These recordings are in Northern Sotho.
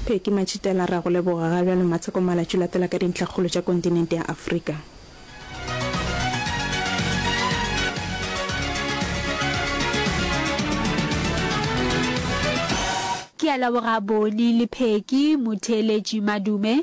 Phecky Matšhitela re a go leboga ga bjalo Matsheko malatšu latela ka dintlhakgolo tša kontinente ya Afrika. Ke a leboga Boni le Phecky, motheeletši Madume,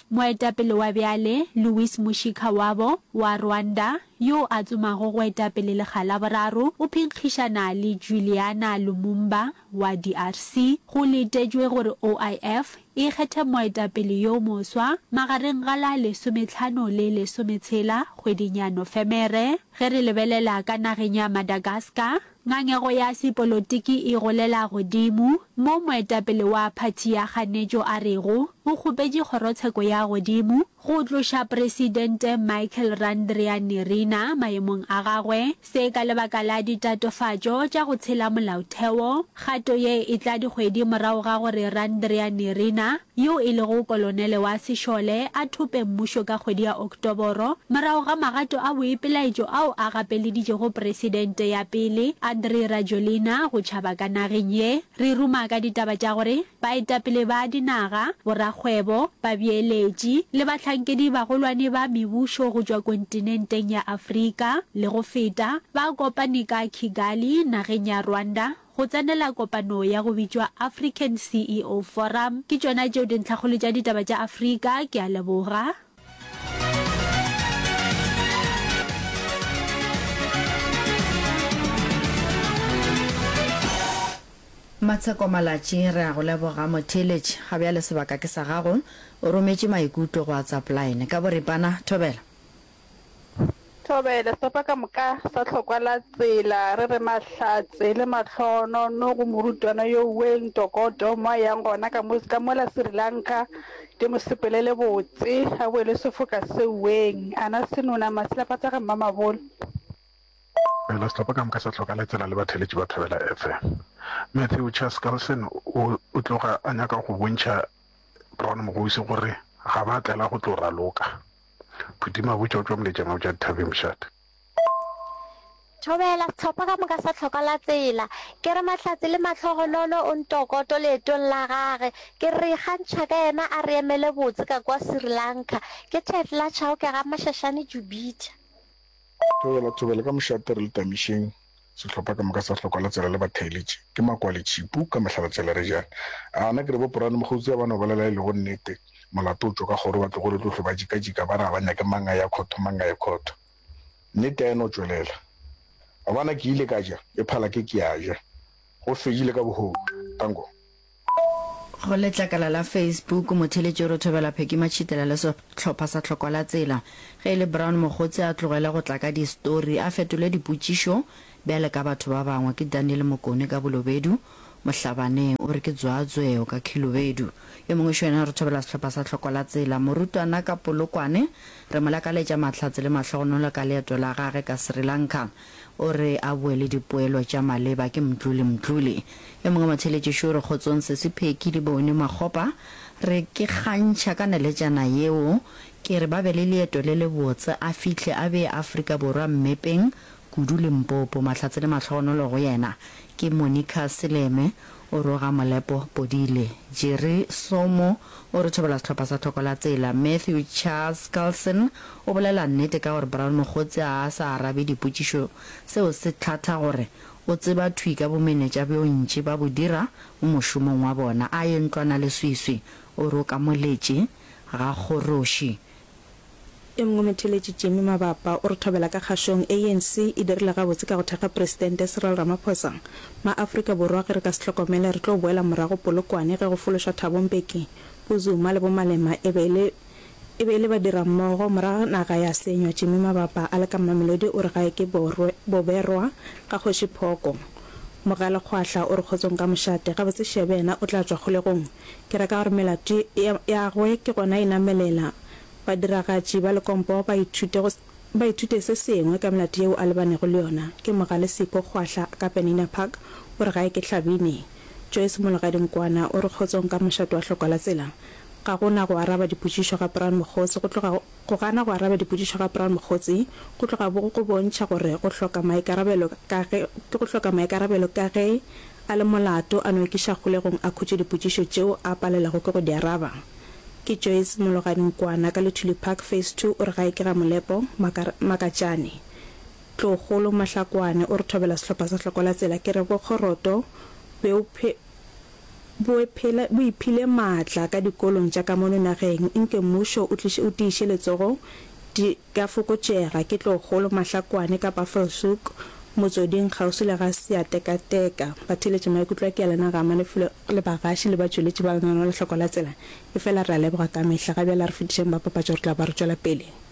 Moetapele wa bjale Louis Mushikiwabo wa Rwanda, yo a tsomago go eta pele lekga la boraro, o phenkgišana le Juliana Lumumba wa DRC. Go letetšwe gore OIF e kgethe moetapele yo moswa magareng ga la lesometlhano le lesometshela kgweding ya Nofemere. Ge re lebelela ka nageng ya Madagascar, Ngangego ya sepolotiki e golela godimo, mo moetapele wa phathi ya kganetšo a rego o kgopetše kgorotsheko ya godimo go tloša Presidente Michael Randrianirina maemong a gagwe, se ka lebaka la ditatofatšo tša go tshela molaotheo, kgato ye e tla dikgwedi morago ga gore Randrianirina yo e lego kolonele wa sešole, a thope mmušo ka kgwedi ya Oktoboro morago ga magato a boipelaetšo ao a gapeleditšego presidente ya pele, Andry Rajoelina, go tšhaba ka nageng ye. Re ruma ka ditaba tša gore baetapele ba dinaga, borakgwebo, babeeletši le bahlankedi-bagolwane ba mebušo go tšwa kontinenteng ya Afrika le go feta ba kopane ka Kigali, nageng ya Rwanda, Go tsenela kopano ya go bitšwa African CEO Forum. Ke tšona tšeo dintlhakgolo tša ditaba tša Afrika. Ke a leboga. Matsheko Malatši re a go leboga motheeletši. Ga bjale sebaka ke sa gago. O rometše maikutlo go WhatsApp line. Ka boripana, thobela. Thobele, sepa ka moka sa hlokwa la tsela, re re mahlatse le mahlono no go morutwana yo Wayne Tokoto mo a yang gona ka mo ka mola Sri Lanka, ke mo sepelele botse a bowe le sefoka seo Wayne, a na senona ma silapa tsa ga Mmamabolo. Thobele, sepa ka moka sa hlokwa la tsela le batheeletši ba Thobela FM. Matthew Chas Carlson o o tloga a nyaka go bontšha Brown Mogousi gore ga ba tlela go tlo raloka. Phuti Mabotja o tšwa Moletšana o tšwa dithabeng mošate. Thobela, Sehlopha ka moka sa tlhoka la tsela. Ke re Mahlatse le mahlogonolo o ntokoto leetong la gage. Ke re ikgantšha ka yena a re emele botse ka kua Sri Lanka. Ke Thetla Chauke ga Mashashane Jubitha. Thobela, Thobela ka mošate re le Tamišeng, sehlopha ka moka sa hlokwa la tsela le ba theeletše ke makwale tšhipu ka mehla la tsela re jane a na ke re bo porane mokgotsi ya ba no bolela e lego nnete molato o tšwa ka kgoro ba tlogo re tlohlwe ba jika jika ba re a ba nyake mang a ya khotho mang a ya khotho nnete a e no tšwelela a bona ke ile ka ja e phala ke ke ya ja go fedile ka boholo tango Go letlakala la Facebook, motheeletši o re Thobela Pheki Matšhitela le sehlopha sa Tlhoko la Tsela, ge e le Brown Mogotsi a tlogele go tla ka distory, a fetole dipotšišo bjale ka batho ba bangwe. Ke Daniel Mokone ka Bolobedu, Mohlabaneng, o re ke Dzwaatsweo ka Khilobedu. Yo mongwe xo yena o re Thobela sehlopha sa Tlhoko la Tsela, Morutwana ka Polokwane, re mo lakaletša mahlatse le mahlogonolo ka leeto la gage ka Sri Lanka. O re a boe le dipoelo tša maleba ke Mdluli Mdluli. Yo mongwe motheeletši šo re kgotsong Sesi Pheki le Bone Makgopa. Re ke kgantšha ka naletšana yeo ke re ba be le leeto le le botse a fihle a bee Afrika Borwa mmepeng kudu Limpopo. Mahlatse le mahlogonolo go yena. Ke Monica Seleme. O roga Molepo Podile, Jerry Somo o re thobela sehlopha sa Thoko la Tsela, Matthew Charles Carlson o bolela nnete ka gore Brown Mokgotsi a a sa arabe dipotšišo seo se tlhatha gore o tseba thwi ka bomenetša bjo ntši ba bo dira mo mošomong wa bona a ye ntlwana le swiswi o roka moletši ga kgoroši Yo mongwe motheeletši Jimmy Mabapa o re thobela ka kgašong ANC e dirile gabotse ka go thekga Presidente Cyril Ramaphosa. Ma Afrika Borwa ge re ka se hlokomele re tlo boela morago Polokwane ge go fološwa Thabo Mbeki, bo Zuma le bo Malema e be e le e be e le badirammogo morago naga ya senywa Jimmy Mabapa a le ka Mamelodi o re gae ke borwe, boberwa ga kgoši Phoko. Mogalekgwahla o re kgotsong ka mošate gabotse Shebe yena o tla tšwa kgolegong Ke ra ka gore melato ya gwe ke gona e namelela badiragatši ba lekompo ba ithute go ba ithute se sengwe ka melato yeo a lebanego le yona. Ke mogale Sipho Kgwahla ka Penina Park o re gae ke Hlabini. Joyce Mologadi Nkwana o re kgotsong ka mošate wa Hlokwa la tsela. Ga go na go araba dipotšišo ga Brown Mokgosi go tloga go. Go gana go araba dipotšišo ga Brown Mokgotsi go tloga bo go bontšha gore go hloka maikarabelo ka ge, ke go hloka maikarabelo ka ge a le molato a no ikiša kgolegong a khutše dipotšišo tšeo a palelwago ke go di araba. Ke Joyce Mologadi Nkwana ka Luthuli Park Phase Two o re gae ke ga Molepo Maka, Makatšane. Tlogolo Mahlakwane o re thobela sehlopha sa Hlokola Tsela ke re bo Kgoroto, Beuphe, bo phele, bo iphile maatla ka dikolong tša ka mono nageng, nke mmušo o tliše, o tiiše letsogo, di ka fokotšega ke tlogolo, Mahlakwane ka Buffelshoek, motsoding kgauswi le ga Seatekateka. Ba theeletše maikutlo a Kealana ga Malefule le bagaši le batšweletši ba lenaneo la Hloko la Tsela, efela re a leboga ka mehla. Ga bjale a re fetišeng ba papatšo, re tla ba re tšwela pele.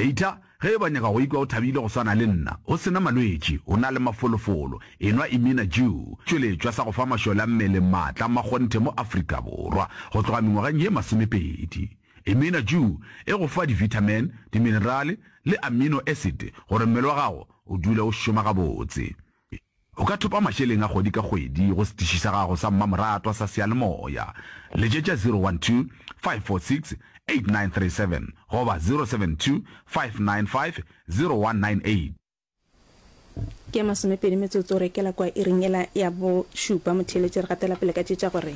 Eithla ge e ba nyaka go ikwa o thabile go swana le nna, o se na malwetši, o na le mafolofolo, enwa Imina Jew, tšweletšwa sa go fa mašole a mmele maatla a makgonthe mo Afrika Borwa go tloga mengwageng ye masomepedi. Imina Jew e go fa divithamin, diminerale le amino acid gore mmele wa gago o dule o šoma gabotse. O ka thopa mašeleng a kgwedi ka kgwedi go setiši sa gago sa mmamoratwa sa seyalemoya. Letšetša 012-546-8937 goba 072-595-0198. Ke ya masomepedi metsotso re kela kwa iring ela ya bošupa. Motheeletši re gatela pele ka tše tša gore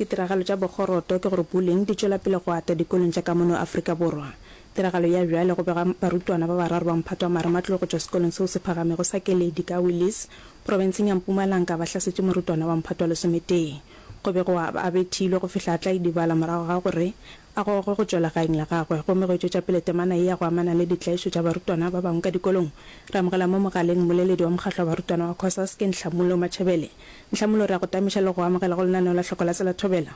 ditiragalo tša bokgoroto ke gore bullying di tšwela pele go ata dikolong tša ka mono Afrika Borwa. Tiragalo ya bjale go bega barutwana ba bararo ba mphato wa marematlou go tšwa sekolong seo se phagamego sa Keledi ka Willies, profenseng ya Mpumalanka ba hlasetše morutwana wa mphato wa lesometee. Go bego a a bethilwe go fihla a tla idibala morago ga gore a gogwe go tšwela gaeng la gagwe. Gomme go e tšwetša pele temana ye ya go amana le ditlaišo tša barutwana ba bangwe ka dikolong, re amogela mo mogaleng mmoleledi wa mokgatlo wa barutwana wa Cosasc, Nhlamulo Matšhebele. Nhlamulo, re a go tamiša le go go amogela go lenaneo la Hloko la Tsela Thobela.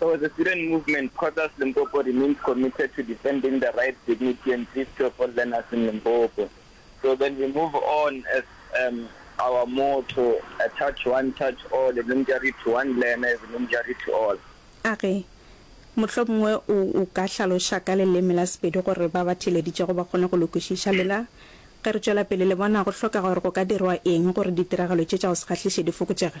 So the student movement, Cosas Limpopo remains committed to defending the rights, dignity and safety of all learners in Limpopo. So then we move on as um, our motto, a touch one, touch all, a Limjari to one learner is a Limjari to all. A re, Mohlomongwe o, o ka hlaloša ka leleme la Sepedi gore ba ba theeleditšego ba kgone go le kwešiša. Lela, ge re tšwela pele, le bona go hlokega gore go ka dirwa eng gore ditiragalo tše tša go se kgahliše di fokotšege?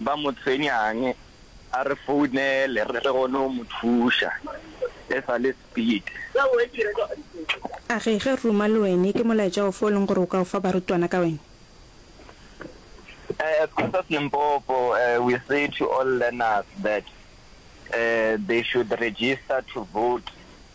Ba mo tshwenyang a re founele re tle kgone go mo thuša e sa le speed. A re ge Ruma le wene ke molaetša ofe o leng gore o ka o fa barutwana ka wene? As Pastors Limpopo we say to all learners that they should register to vote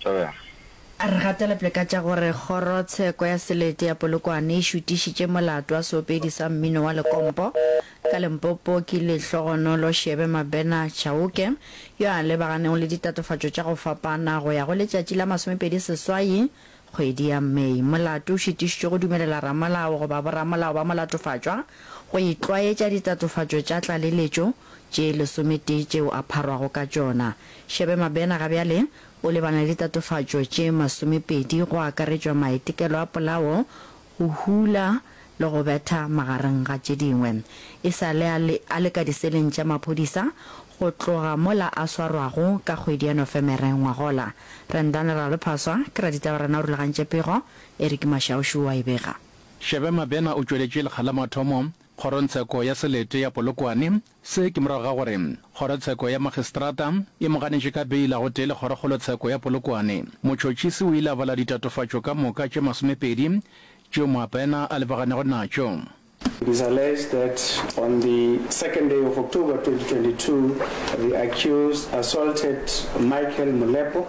Joel. A re gatelepele ka tša gore Kgorotsheko ya Selete ya Polokwane e šutišitše molato wa seopedi sa mmino wa lekompo ka Limpopo ke Lehlogonolo Shebe Mabena Chauke yo a lebaganego le ditatofatšo tša go fapana go ya go letšatši la masomepedi seswai Kgwedi ya May, molato o šitišitšwe go dumelela ramolao goba boramolao ba molatofatšwa go itlwaetša ditatofatšo tša tlaleletšo tše lesometee tšeo a pharwago ka tšona. Shebe Mabena ga bjale o lebana le ditatofatšo tše masomepedi go akaretšwa maetekelo a polao, go hula le go betha magareng ga tše dingwe. E sa le a le, a le ka diseleng tša maphodisa go tloga mola a swarwago ka kgwedi ya Nofemere ngwagola. Rendane Ralophaswa ke raditaba rena o rulagantše pego, Eric Mashaušu o a e bega. Shebe Mabena o tšweletše lekga la mathomo kgorongtsheko ya Selete ya Polokwane Se ke morago ga gore Kgorotsheko ya Makgistrata e mo ganetše ka beila gotee le Kgorokgolotsheko ya Polokwane. Motšhotšhisi o ile a bala ditatofatšo ka moka tše masomepedi tšeo Moapena a lebaganyago natšo. It is alleged that on the second day of October 2022, the accused assaulted Michael Molepo,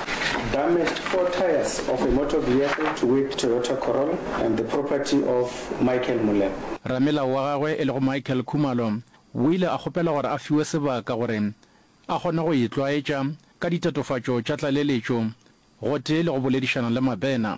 Damaged four tyres of a motor vehicle to whip Toyota Corolla and the property of Michael Moleko. Ramelao wa gagwe e lego Michael Khumalo o ile a kgopela gore a fiwe sebaka gore a kgone go itlwaetša ka ditatofatšo tša tlaleletšo gotee le go boledišana le Mabena.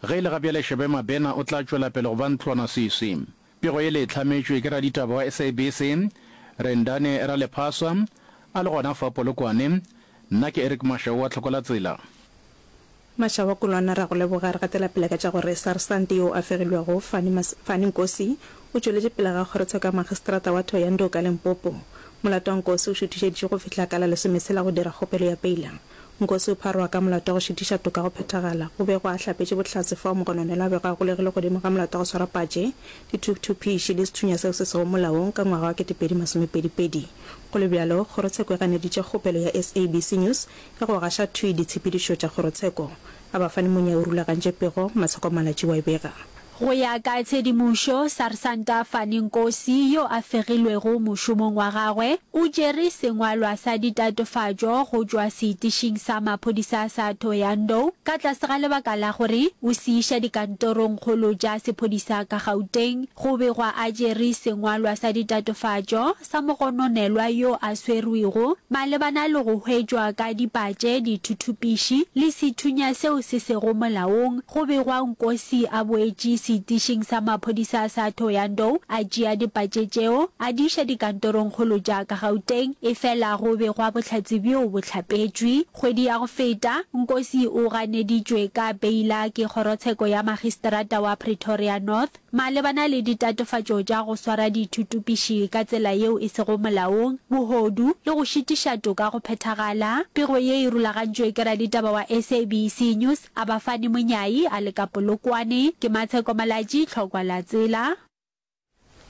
Ge e le gabjale Shebe Mabena o tla tšwela pele go ba ntlwanasisi. Pego yele e hlametšwe ke raditaba wa SABC, Rendane Ralephasa, a le gona fa Polokwane. Nna ke Eric Mashau wa Tlhokwelatsela. Mashau a Kolwana, re a go leboga. Re gatela pele ka tša gore Sarsante yo a fegilwego, Fani Mas-, Fani Nkosi, o tšweletše pele ga kgorotsheko ya Magistrata wa Thohoyandou ka Limpopo. Molato wa Nkosi o šuthišeditšwe go fihla ka la lesometshela go dira kgopelo ya peila. Nkosi o pharoga ka molato wa go šitiša toka go phethagala. O bego a hlapetše bohlatse fao mogononelo a bego a golegile godimo ga molato wa go swara patše, dithuthupiši le sethunya seo se sego molaong ka ngwaga wa ketepedi masomepedi pedi. Go le bjalo, kgorotsheko e ganeditše kgopelo ya SABC News ya go gaša thwi ditshepedišo tša kgorotsheko. A ba fane monya o rulagantše pego, Maseko Malatjiwa e bega. Go ya ka tshedimošo, Sarsanta Fani Nkosi, yo a fegilwego mošomong wa gagwe, o tšere sengwalwa sa ditatofatšo go tšwa seitišing sa maphodisa sa Thohoyandou ka tlase ga lebaka la gore o se iša dikantorongkgolo tša sephodisa ka Gauteng. Go begwa a tšere sengwalwa sa ditatofatšo sa mogononelwa yo a swerwego malebana le go hwetšwa ka dipatše, dithuthupiši le sethunya seo se sego molaong go begwa Nkosi a boetše seitišing sa maphodisa sa Thohoyandou a tšea dipatše tšeo a di iša dikantorongkgolo tša ka Gauteng efela go begwa bohlatse bjo bo hlapetšwe. Kgwedi ya go feta, Nkosi o ganeditšwe ka beila ke kgorotsheko ya Magistrata wa Pretoria North. Malebana le ditatofatšo tša go swara dithuthupiši ka tsela yeo e sego molaong, bohodu, le go šitiša toka go phethagala, pego ye e rulagantšwe ke raditaba wa SABC News, Abafani Monyai, a le ka Polokwane, ke Matsheko Malatji, Tlhokwa la Tsela.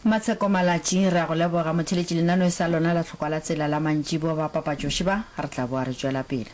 Matsheko Malatji, re a go leboga. Motheletši, lenaneo e sa lona la Tlhokwa la Tsela la mantšiboa ba papatšoši ba, re tla boa re tšwela pele.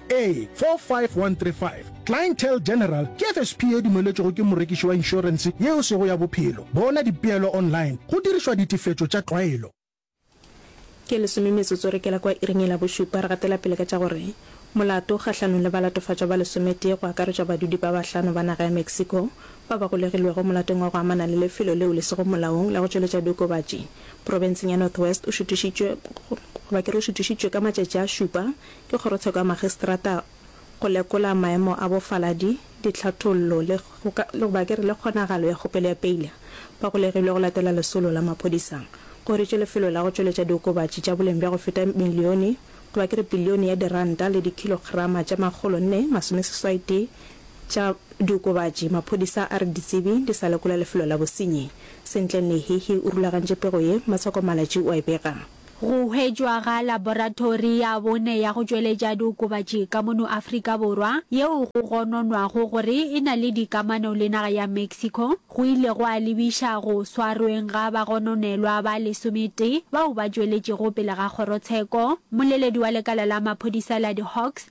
A45135, Clientele General ke FSP ye dumeletšwego ke morekiši wa inšorense ye o sego ya bophelo. Bona dipeelo online go dirišwa ditefetšo tša tlwaelo. Ke lesome metsotso re kela kwa iring e la bošupa, re gatela pele ka tša gore molato kgahlanong le balatofatšwa ba lesometee go akaretšwa badudi ba bahlano ba naga ya Mexico ba ba golegilwego molatong wa go amana le lefelo leo le sego molaong la go tšweletša diokobatši profenseng ya Northwest o šutišitšwe goba ke re o šutišitšwe ka matšatši a šupa Ke kgorotsheko ya magistrata go lekola maemo a bofaladi, ditlhathollo le goba ke re le kgonagalo ya kgopelo ya peile ba golegilwe go latela lesolo la maphodisa. Go hiritšwe lefelo la go tšweletša diokobatši tša boleng bja go feta milione goba ke re bilione ya diranta le dikhilograma tše makgolo nne masomeseswaitee tša diokobatši. Maphodisa a re ditsebi di sa lekola lefelo la bosenyi sentle. Nehihi o rulagantše pego ye, Masoko Malatji o a e bega. Go hwetšwa ga laboratori ya bone ya go tšweletša diokobatši ka mono Afrika Borwa, yeo go gononwago gore e na le dikamano le naga ya Mexico, go ile gwa lebiša go swarweng ga bagononelwa ba lesometee bao ba tšweletšego pele ga kgorotsheko. Mmoleledi wa lekala la maphodisa la di-Hawks,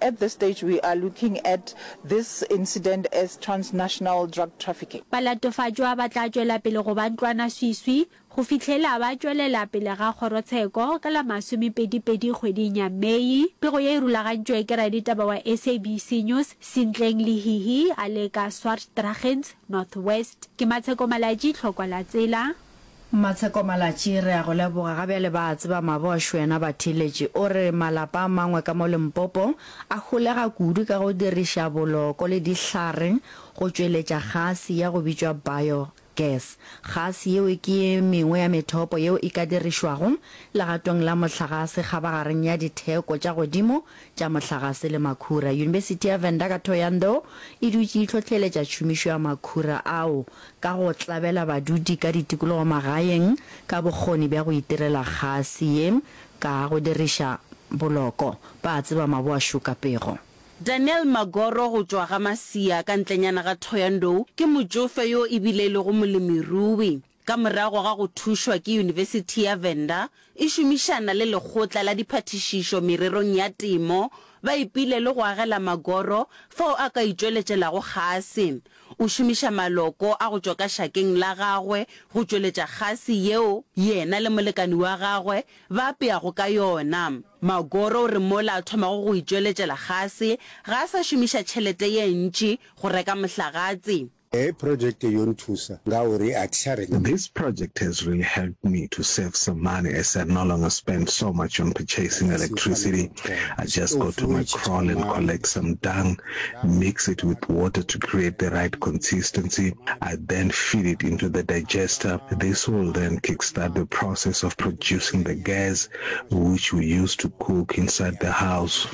At this stage we are looking at this incident as transnational drug trafficking. Balatofatšwa ba tla tšwela pele go ba ntlwanaswiswi go fihlela ba tšwelela pele ga kgorotsheko ka la masomepedi pedi kgweding ya Mei. Pego ye e rulagantšwe ke raditaba wa SABC News Sintleng Lehihi a le ka Swartdragens, North West. Ke Matsheko Malatji, Tlhokwa la Tsela. Mmatsheko Malatji re a go leboga ga bjale ba a tseba Mabosh wena ba theletše o re malapa a mangwe ka mo Limpopo a holega kudu ka go diriša boloko le dihlare go tšweletša gase ya go bitšwa bio gas gase yeo ke ye mengwe ya methopo yeo e ka dirišwago legatong la mohlagase kgabagareng ya ditheko tša godimo tša mohlagase le makhura Yunibesithi ya Venda ka Thohoyandou e dutše e hlohleletša tšhomišo ya makhura ao ka go tlabela badudi ka ditikologo magaeng ka bokgoni bja go itirela kgase ye ka go diriša boloko ba a tseba maboa šuka pego. Daniel Magoro go tšwa ga Masia ka ntlenyana ga Thohoyandou ke motšofe yo e bile e lego molemirui. Ka morago ga go thušwa ke Yunibesithi ya Venda, e šomišana le Lekgotla la Diphathišišo Mererong ya Temo, ba ipile le go agela Magoro fao a ka itšweletšelago kgase. O šomiša maloko a go tšwa ka šakeng la gagwe go tšweletša kgase yeo yena le molekane wa gagwe ba apeago ka yona. Magoro o re mola a thomago go itšweletšela kgase, ga a sa šomiša tšhelete ye ntši go reka mohlagatse. Hei project yo nthusa ngauri a thi tsha renga. This project has really helped me to save some money as I no longer spend so much on purchasing electricity, I just go to my kraal and collect some dung mix it with water to create the right consistency, I then feed it into the digester, this will then kickstart the process of producing the gas which we use to cook inside the house.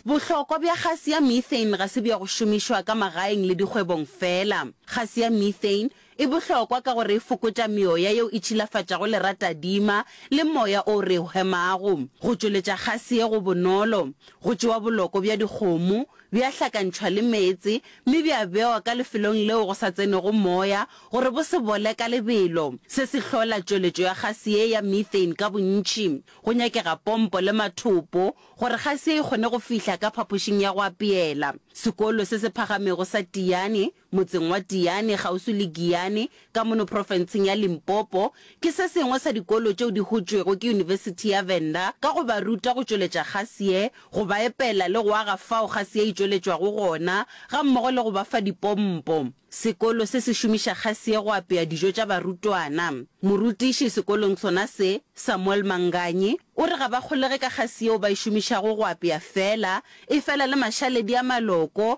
Bohlokwa bja gase ya methane ga se bja go šomišwa ka magaeng le dikgwebong feela. Gase ya methane E bohlokwa ka gore e fokotša meoya yeo e tšhilafatšago leratadima le moya o re o hemago. Go tšweletša kgase ye go bonolo. Go tšewa boloko bja dikgomo, bja hlakantšhwa le meetse, mme bja bewa ka lefelong leo go sa tsenego moya gore bo se bole ka lebelo. Se se hlola tšweletšo ya kgase ye ya methane ka bontši. Go nyakega pompo le mathopo gore kgase ye e kgone go fihla ka phapošing ya go apeela. Sekolo se se phagamego sa Tiyani, Motseng wa Tiyane, kgauswi le Giyane, ka mono profenseng ya Limpopo, ke se sengwe sa dikolo tšeo di hotšwego ke Yunibesithi ya Venda ka go ba ruta go tšweletša kgase ye, go ba epela le go aga fao kgase ye e tšweletšwago gona, gammogo le go ba fa dipompo. Sekolo se se šomiša kgase ye go apea dijo tša barutwana. Morutiši sekolong sona se, Samuel Manganyi, o re ga ba kgolege ka kgase yeo ba e šomišago go apea feela, efela le mašaledi a maloko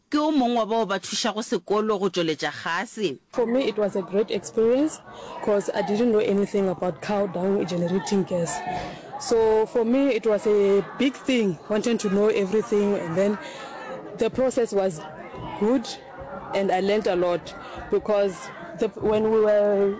Ke o mong wa bao ba thušago sekolo go tšweletša kgase. For me it was a great experience cos I didn't know anything about cow dung generating gas so for me it was a big thing wanting to know everything and then the process was good and I learnt a lot because the when we were